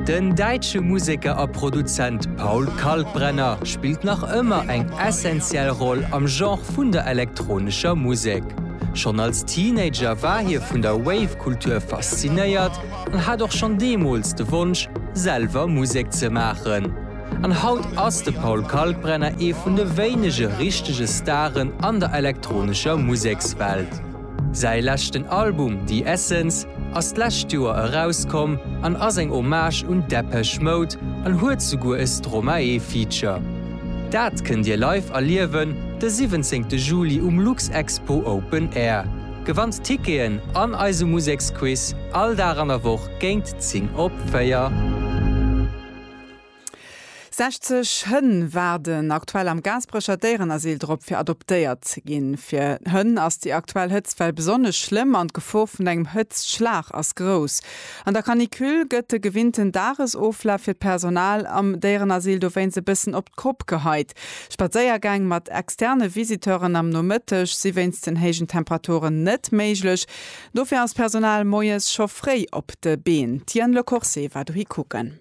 Den däitsche Museker a Produzent Paul Kalkbrenner spillt nach ëmmer eng essentiell Roll am Genre vun der elektronescher Musek. Schonn als Teenager war hie vun der Wave-Kultur faszinéiert an hat och schonn deemools de Wonsch, selwer Musek ze maachen. An haut ass de Paul Kalkbrenner ee vun de wéinege richtege Staren an der elektronescher Musekswelt. Säi leschten Album The Essence ass d'lescht Joer erauskomm an ass eng Hommage un Depeche Mode an huet souguer e Stromae-Feature. Dat kënnt Dir live erliewen de 17 Juli um Luxexpo Open Air. Gewannt Ticketen an eise Museksquiz all Dag an der Woch géint 10 op 4. 60 Hënn waarden aktuell am Gaasperecher Déierenasyl drop, fir adoptéiert ze ginn. Fir d'Hënn ass déi aktuell Hëtztwell besonnesch schlëmm an d'Gefor vun engem Hëtztschlag ass grouss. An der Canicule gëtt de gewinnten Dagesoflaf fir d'Personal am Déierenasyl dowéinst e bëssen op d'Kopp geheit. Spadséiergäng mat externe Visiteuren am Nomëtteg si wéinst den héijen Temperaturen net méiglech. Dofir ass d'Personal moies scho fréi op de Been. D'Diane Lecourcé war dohi kucken.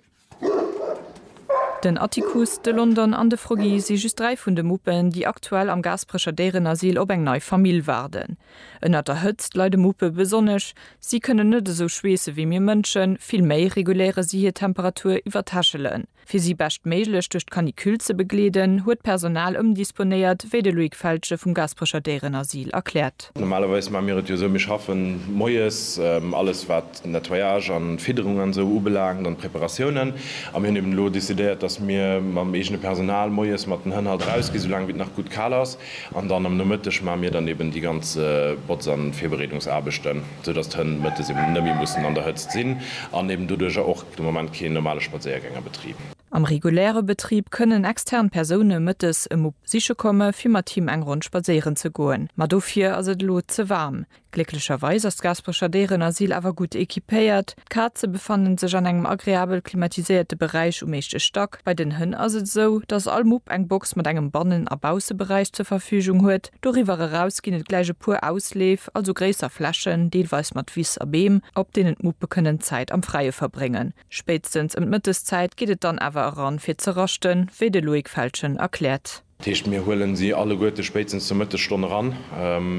Den Atticus, de London an de Froggy si just dräi vun de Muppen, déi aktuell am Gaasperecher Déierenasyl op eng nei Famill waarden. Ënnert der Hëtzt leide Muppe besonnesch. Si kënnen net esou schweesse wéi mir Mënschen, vill méi reguléiere si hir Temperatur iwwer d'Hechelen. Fir si beschtméiglech duerch d'Canicule ze begleeden, huet d'Personal ëmdisponéiert, wéi de Loïc Feltgen vum Gaasperecher Déierenasyl erkläert. Normalerweis maache mir et jo esou, mir schaffen moies alles wat Nettoyage an Fidderung an esou ubelaangt an Preparatiounen. A mir hunn eben elo décidéiert, dass mir mam eegene Personal moies mat den Hënn halt erausginn, sou laang wéi et nach gutt kal ass. An dann am Nomëtteg maache mir dann eben déi ganz Botz an Virbereedungsaarbechten, sou dass d'Hënn mëttes eben net méi mussen an der Hëtzt sinn an eben doduerjer och de Moment keen normale Spadséiergäng a Betrib. Am reguläre Betrib kënnen extern Persoune mëttes e Mupp siche komme fir mat him eng Ronn spadséieren ze goen, ma dofir ass et elo ze waarm. Glécklecherweis ass d'Gaasperecher Déierenasyl awer gutt equipéiert. D'Kaze befannen sech an engem agreabel klimatiséierte Beräich um éischte Stack. Bei den Hënn ass et esou, dass all Mupp eng Box mat engem Bannen a Bausseberäich zur Verfügung huet. Doriwwer eraus ginn et gläich e puer Ausleef, also gréisser Flächen, deelweis mat Wiss a Beem, op deenen d'Muppe kënnen Zäit am Fräie verbréngen. Spéitstens ëm d'Mëtteszäit geet et dann awer eran fir ze raschten, wéi de Loïc Feltgen erkläert. Dat heescht, mir huelen si alleguerte spéitstens zur Mëttesstonn eran.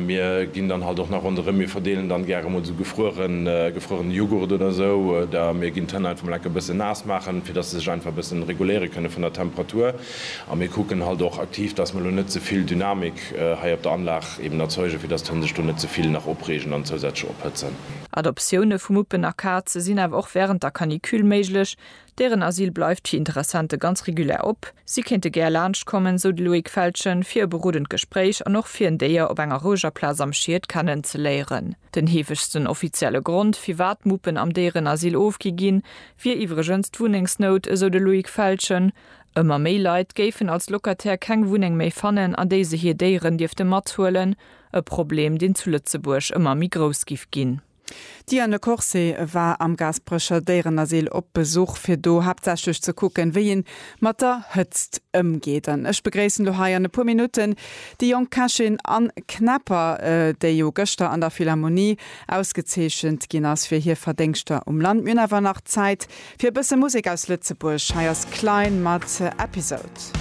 Mir ginn dann halt och nach ronderëm, mir verdeelen dann gäre emol esou gefrueren, gefruerene Jughurt oder esou, oder mir ginn d'Hënn einfach mol enke bëssen naass maachen, fir dass se sech einfach e bëssen reguléiere kënne vun der Temperatur. A mir kucken halt och aktiv, dass mer elo net ze vill Dynamik hei op der Anlag eben erzeugen, fir dass d'Hënn sech do net ze vill nach opreegen an zousätzlech ophëtzen. Adoptioune vu Muppen a Kaze sinn awer och wärend der Canicule méiglech, Deren Asyl bleift fir Interessente ganz regulär op. Si kéinte gär laanscht kommen, sou de Loïc Feltgen, fir e berodend Gespréich an och fir en Déier op enger roueger Plaz am Schied kennenzeléieren. Den heefegsten offizielle Grond, firwat Muppen am Déierenasyl ofgi ginn, wier iwwregens d'Wunnengsnout, esou de Loïc Feltgen. Ëmmer méi Leit géifen als Locataire keng Wunneng méi fannen, an déi se hir Déieren dierfte mathuelen. E Problem, deen zu Lëtzebuerg ëmmer méi grouss giff ginn. D'Diane Corset war am Gaasperecher Déierenasyl op Besuch fir do haaptsächlech ze kucken, wéi een mat der Hëtzt ëmgeet. An ech begréissen lo hei an e puer Minutten déi jonk Kächin Anne Knepper, déi jo gëschter an der Philharmonie ausgezeechent ginn ass fir hir Verdéngschter um Land. Mir hunn awer nach Zäit fir e bësse Musek aus Lëtzebuerg. Hei ass Klein mat Episode.